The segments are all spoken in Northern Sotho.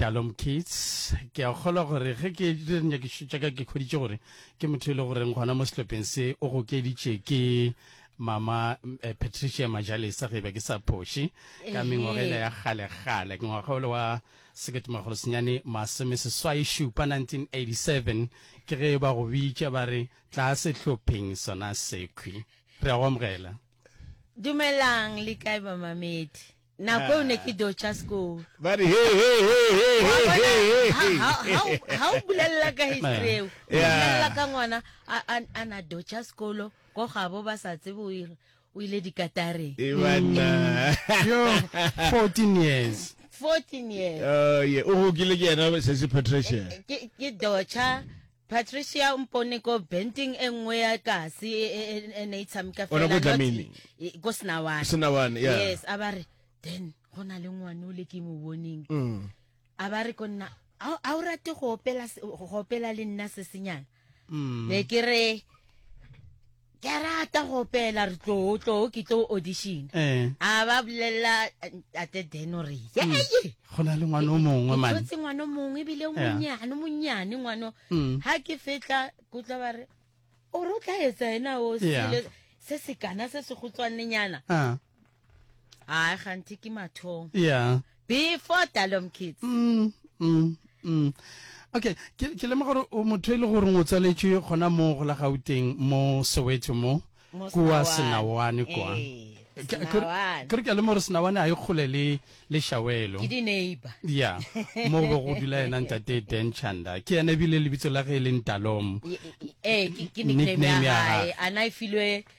Talom Kids, ke a kgolwa gore ge ke dire dinyakišo tša ka ke kgweditše gore ke motho e le goreng gona mo sehlopheng se o gokeditše ke mama eh, patricia majalesa ge e be ke sa phoše ka mengwagela ya kgalegale ke ngwaga ole wa seketemagolo senyane masome seswai šupa 1987 ke ge ba go bitša ba re tla sehlopheng sona sekhwi re a go amogela dumelang le kae bamamedi Nako eo ne ke dio tša sekolo. Ba re, He, he, he, he, he, Wa bona, he, he, ha- he. ha- ha o- ha o bulelela ka history eo o Yeah. bulelela ka ngwana a- a- a na dio tša sekolo ko gabo ba sa tsebe o ir- o ile dikatareng E banna. Yo, 14 years. 14 years Oh, yeah. O gokile ke yena, Sesi Patricia. ke ke docha Patricia o mpone ko benting e nngwe ya kasi e, e, e, e ne e tshameka Ona ko fela not Dlamini. e- ko senawane Senawane, yeah. yes a ba re then go na le ngwane o le ke mo boneng Mm. a ba re ko nna a a o rate go opela se- go opela le nna se senyana Mm. ne ke re ke a rata go opela re tloo tloo ke tlo audition Eh. a ba bolelela tate deno re yeye Mm. go na le ngwana o mongwe mane tshotse ngwana o mongwe ebile o Yeah. monnyane o monnyane ngwana o. Mm. ha ke fetla ke utlwa ba re o re o tla etsa ena o Yeah. sele se se kana se se gotswanenyana Ah. hayi kganti ke mathong yeah before dalom kids mm, mm, mm. okay ke, ke lema gore o motho e le gore o tsaletswe gona mo go la gauteng mo soweto mo kua senawane kwa eh, kere ke a lema gore senawane a e kgole le le shawelo ya mo go go dula ena ntate dan chanda ke ene ebile lebitso la ge e leng talom eh, nickname ya gae ana e filwe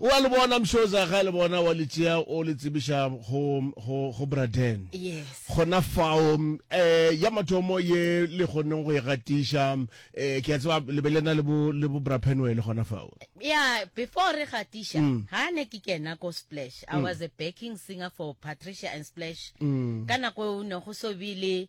O a le bona mshoza ga le bona wa le tšea o le tsebiša go go go Braden. Yes. Gona fao eh ya mathomo ye le goneng go e gatiša eh ke a tseba le be le na le bo le bo Bra Penwell gona fao. Yeah, before re gatiša, Mm. ha ne ke kena ko Splash. I was a backing singer for Patricia and Splash. Mm. Ka nako eo ne go so bile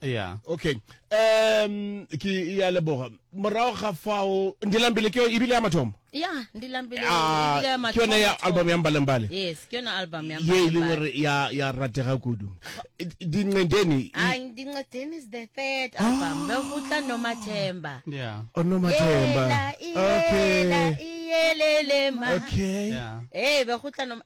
yeah okay um ke ya leboga morago ga fao ndilambile ke e bile ya mathomo ya ndilambile ah, e ke yone ya album ya mbalembale yes ke yone album ya ye e leng gore ya ya ratega kudu dincedeni ah, dincedeni is the third album ah. be go tla no mathemba yeah o oh, no mathemba okay yelele ma okay yeah. hey eh, be go tla no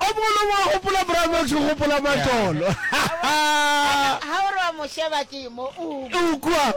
O mogolo wa gopola Bramax o gopola matolo. Ha o re wa mo sheba ke mo o. O kwa.